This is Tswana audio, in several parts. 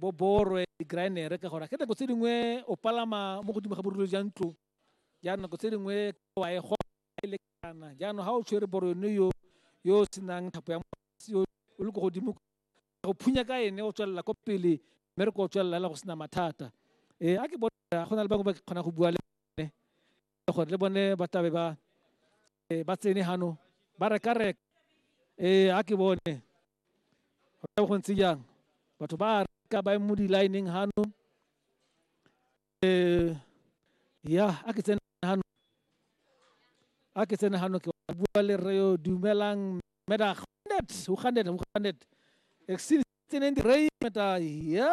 bo borwe di-grinere ka gore ke nako tse dingwe o palama mo godimo ga borule jwa ntlo jaanong nako tse dingwe wa e go e lekana jaanong ga o tshwere boro yone yo yo o senang thapo ya yo o le ko godimo go phunya ka ene o tswelela ko pele mme re ko o tswelela go sena mathata ee a ke bona go na le bangwe ba kgona go bua le bone gore le bone ba tlabe ba Eh, ba tsene gano ba reka reka ee a ke bone go tla go ntse jang batho ba reka ba mo di-lineng gano eh ya a ke tsene gano a ke tsene gano ke wa bua le rre yo dumelang meda gandet o gandet o gandet exile tseneng di rei meda ya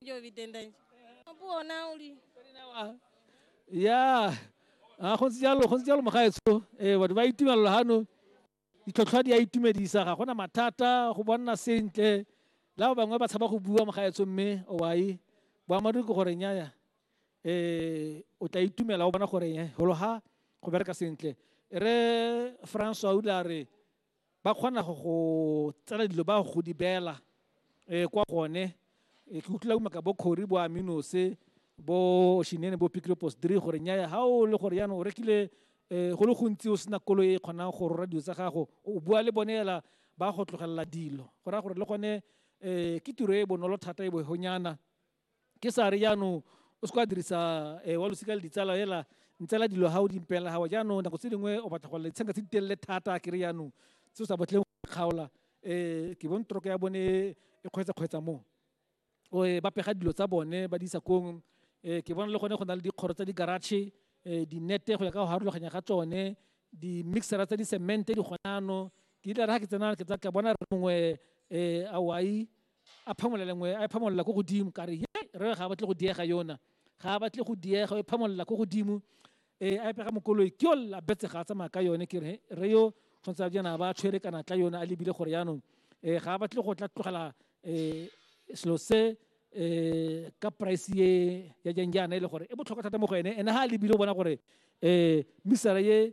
Ndio vitenda nje. Puo na uli. ya a go ntse jalo go ntse jalo mogaetsho ee batho ba itumelela gano ditlhotlhwa di a itumedisa ga gona mathata go bonna sentle la ba bangwe ba tshaba go bua mogaetsho mme owai boammaaruri ke gore nyaya um o tla itumela o bona gore e gologa go bereka sentle re francois o ile a re ba kgona go go tsela dilo ba go di beela um kwa gone eh, ke utlwila umaka bo kgori bo aminose bo shinene bo pikilopos diri gore nyaya ga o le gore yaanong o rekile um go le gontsi o sena kolo e kgonang go rora dilo tsa gago o bua le bone ela ba go tlogelela dilo go raya gore le gone um ke tiro e bonolo thata e bohonyana ke sa re jaanong o se ka dirisa eh, wa losika le ditsala fela ntsela dilo ga o di mpela gawa jaanong nako tse dingwe o batla go lela ditshenka tse di telele thata ke re jaanong se o sa batleng go kgaola um ke bone toroke ya bone e kgwetsa-kgwetsa moo um ba pega dilo tsa bone ba di isa kong um ke bona le gone go na le dikgoro tsa di-garage um dinete go ya ka go harologanya ga tsone di-mixera tsa di-cemente di gonano ke ile ra ke tsena ke bona re mongwe um awai a phamolela lengwe a e phamolela ko godimo ka re ye re ga a batle go diega yona ga a batle go diega o e phamolela ko godimo e a epega mokoloi ke yo la betse ga a tsamaya ka yone ke re re yo tshwanetse jana ba tshwere kana tla yone a lebile gore yaanong um ga a batle go tla tlogela um selo se um ka price ye ya jang jaana e le gore e botlhokwa thata mo go ene ene ga a lebile o bona gore um misara ye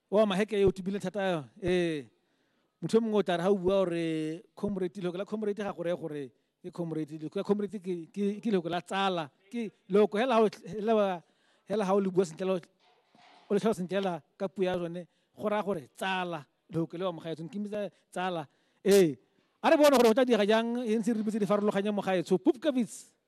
wa maheke yo o tibile thata yo ee motho yo mongwe o tla re ga o bua gore comrade lehoko la comrade ga gore gore ke comrade lehoko la comrade ke lehoko la tsala ke lehoko hela ga o le bua sentle o le tlhalo sentle hela ka puo ya sone go raya gore tsala lehoko le wa mogaetsong ke mmitsa tsala ee a re bone gore go tla diega jang e ntse re rebetse di farologanye mogaetsho pupkavits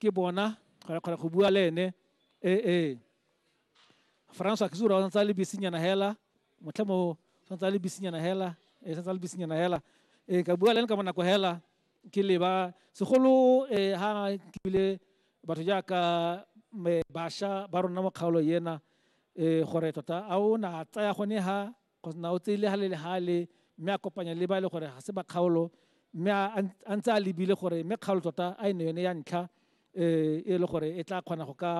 ke bona kgona kgona go bua le ene ee ee francois ke sura o santse a le bisinyana hela motlhe mo santse a le bisinyana hela ee santse a le bisinyana hela ee ka bua le ene ka bonako hela ke leba segolo ee ha ke bile batho jaaka basha ba rona mo kgaolo ena ee gore tota a o na tsaya gone ha go na o tseile ga le le ga le mme a kopanya le ba e le gore ga se ba kgaolo mme a ntse a lebile gore mme kgaolo tota a e ne yone ya ntlha um e le gore e tla kgona go ka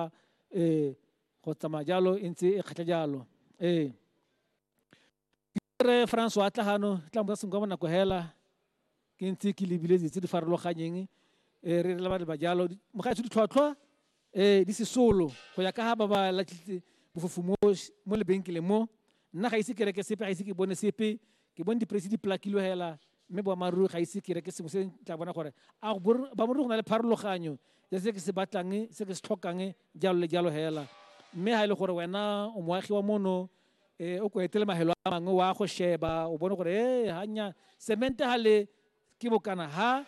um go tsamaya jalo e ntse e kgatlha jalo ee re francois tla gano tla mo sa senka mo nako hela ke ntse ke lebile dilo tse di farologanyeng um re re leba leba jalo mogaetsho ditlhwatlhwa um di sesolo go ya ka ga ba ba latlhitse bofofu mo mo lebenkeleng mo nna ga ise ke reke sepe ga ise ke bone sepe ke bone dipresi di plakilwe hela mme boammaaruri ga ise ke reke sengwe se tla bona gore a boammaaruri go na le pharologanyo ya se ke se batlang se ke se tlhokang jalo le jalo hela mme ga e le gore wena o moagi wa mono e o ko etele mahelo a mangwe wa go sheba o bone gore e hanya semente ha le ke bokana ha